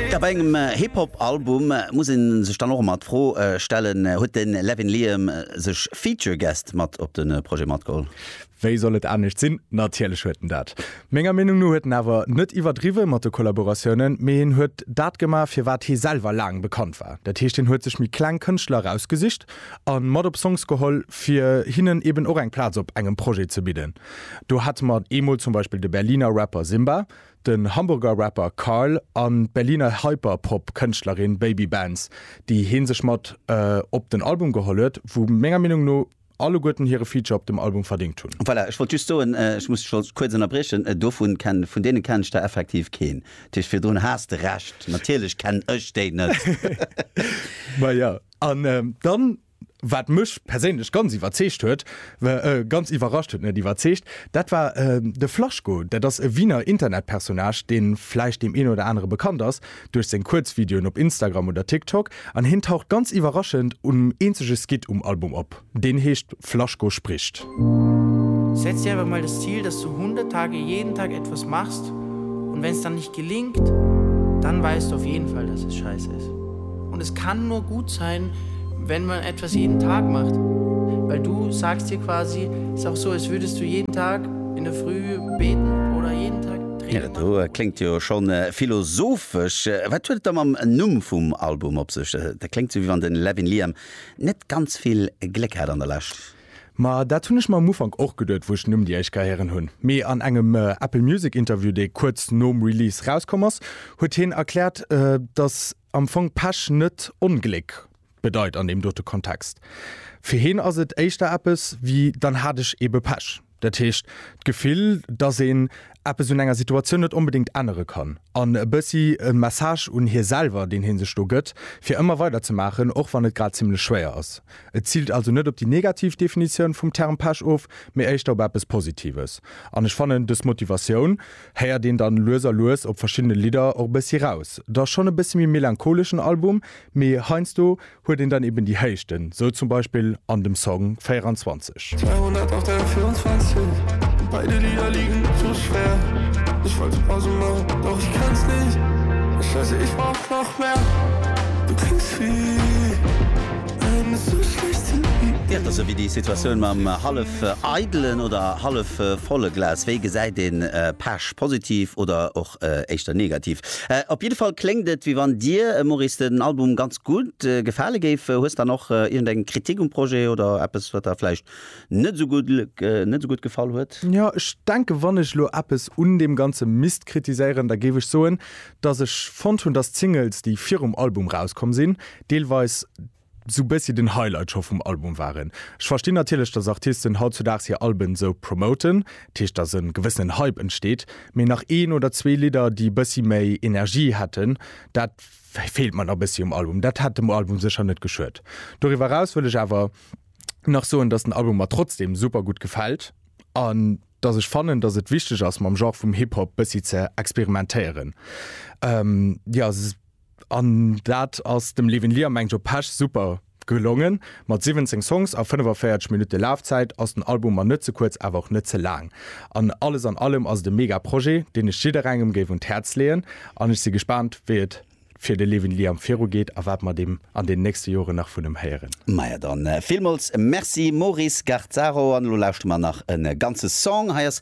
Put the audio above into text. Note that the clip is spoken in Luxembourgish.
Tja, bei engem Hip-Hop Album muss een sech dann och emmer d'Fro stellen, huet den Levin Liam sech Feature Guest mat op den Projet matgeholl? Wéi soll et anescht sinn? Natierlech huet en dat. Menger Meenung no huet en awer net iwwerdriwwen mat de Kollaboratiounen, mee hien huet dat gemaach fir wat hie selwer laang bekannt war. Dat heescht hien huet sech méi kleng Kënschtler erausgesicht an mat op Songs geholl fir hinnen eben och eng Plaz op engem Projet ze bidden. Do hate mer eemol zum Beispill de Berliner Rapper Simba. den Hamburger Rapper Karl an d'Berliner Hyperpop Kënschtlerin Baby Benz, déi hien sech mat op den Album geholl huet, wou menger Meenung no alleguerten hire Feature op dem Album verdéngt hunn. Voilà, ech wollt just soen, ech muss dech schonns kuerz ënnerbriechen, dovun kennen, vun deenen kennen ech der effektiv keen, dat heescht virdrun has de Recht, natierlech kennen ech déi net. Majo, an dann Wat mech perséinlech ganz iwwerzeegt huet, ganz iwwerrascht huet, net iwwerzeegt, dat war de Flaschko. Dat ass e Wiener Internetpersonnage, dee vläicht deem een oder anere bekannt ass duerch seng Kuerzvideoen op Instagram oder TikTok. An hien taucht ganz iwwerraschend un eenzege Skit um Album op, deen heescht Flaschko spricht. Setz dir einfach mal das Ziel, dass du 100 Tage jeden Tag etwas machst und wenn es dann nicht gelingt, dann weißt du auf jeden Fall, dass es scheiße ist. Und es kann nur gut sein, wenn man etwas jeden Tag macht, weil du sagst dir quasi, es ist auch so, als würdest du jeden Tag in der Früh beten oder jeden Tag Training machen. Do kléngt jo schon philosophesch. Wat huet et da mam Numm vum Album op sech? Dat kléngt sou wéi wann de Levin Liam net ganz vill Gléck hat an der Lescht. Ma dat hunn ech mer um Ufank och geduet, wou ech den Numm déi éischt Kéier héieren hunn. Mee an engem Apple Music Interview, dee kuerz nom Release rauskomm ass, huet hien erkläert, dass am Fong Pech net Ongléck bedeit an deem dote Kontext. Fir hien ass et éischter eppes wéi, dann hat ech eebe Pech. Dat heescht, d'Gefill, dass een eppes un enger Situatioun net onbedéngt ännere kann an e bëssi e Message un hie selwer, deen hie sech do gëtt, fir ëmmer weider ze maachen, och wann et grad zimmlech schwéier ass. Et ziilt also net op déi negativ Definitioun vum Term Pech of, mee éischter op eppes Positives. An ech fannen, dës Motivatioun héiert een dann lues a lues op verschiddene Lidder och e bëssi raus. Et ass schonn e bëssi méi melancholeschen Album, mee heiansdo huet een dann eben déi Héichten, sou zum Beispill an dem Song 24. 'Theater', sou wéi déi Situatioun mam hallef eidelen oder hallef volle Glas. Wéi gesäit een Pech, positiv oder och éischter negativ? Op jidde Fall kléngt et, wéi wann dir, Maurice, den Album ganz. gutt gefale géif. Hues dann och iergend eng Kritik um Projet oder eppes wat der vläicht net esou gutt net esou gutt gefall huet? Jo, ech denken, wann ech elo eppes un deem Ganze misst kritiséieren, da géif ech soen, dass ech fonnt hunn, dass d'Singles, déi virum Album rauskomm sinn, deelweis esou e bëssi den Highlight scho vum Album waren. Ech verstinn natierlech, dass Artisten hautzudaags hir Alben esou promoten, dat heescht, dass e gewëssenen Hype entsteet, mee nach een oder zwee Lidder, déi e bëssi méi Energie hätten, dat Wei feelt mer nach bessi um Album. Dat hätt dem Album secher net geschued. Doriwer raus wëll ech awer nach soen dass den Album mer trotzdem super gudd gefällt an dass ech fannen dass et wichteg ass mam Genre vum Hip Hop bessi ze experimentéieren. An dat ass dem Levin Liam eng Joe Pesch super Gelongen! Mat 17 Songs a 45 Minutte Lafzäit ass den Album mar net ze kuerz awer och net ze laang. An alles an allem ass et e mega Projet, deen ech jidderengem géif un d'Häerz leeën an ech si gespaant wéi et fir de Levin Liam viru geet a wat mer deem an den nächste Joren nach vun em héieren. Maja dann, villmols merci Maurice Garzaro an elo lauschte mer nach e ganze Song. Hei ass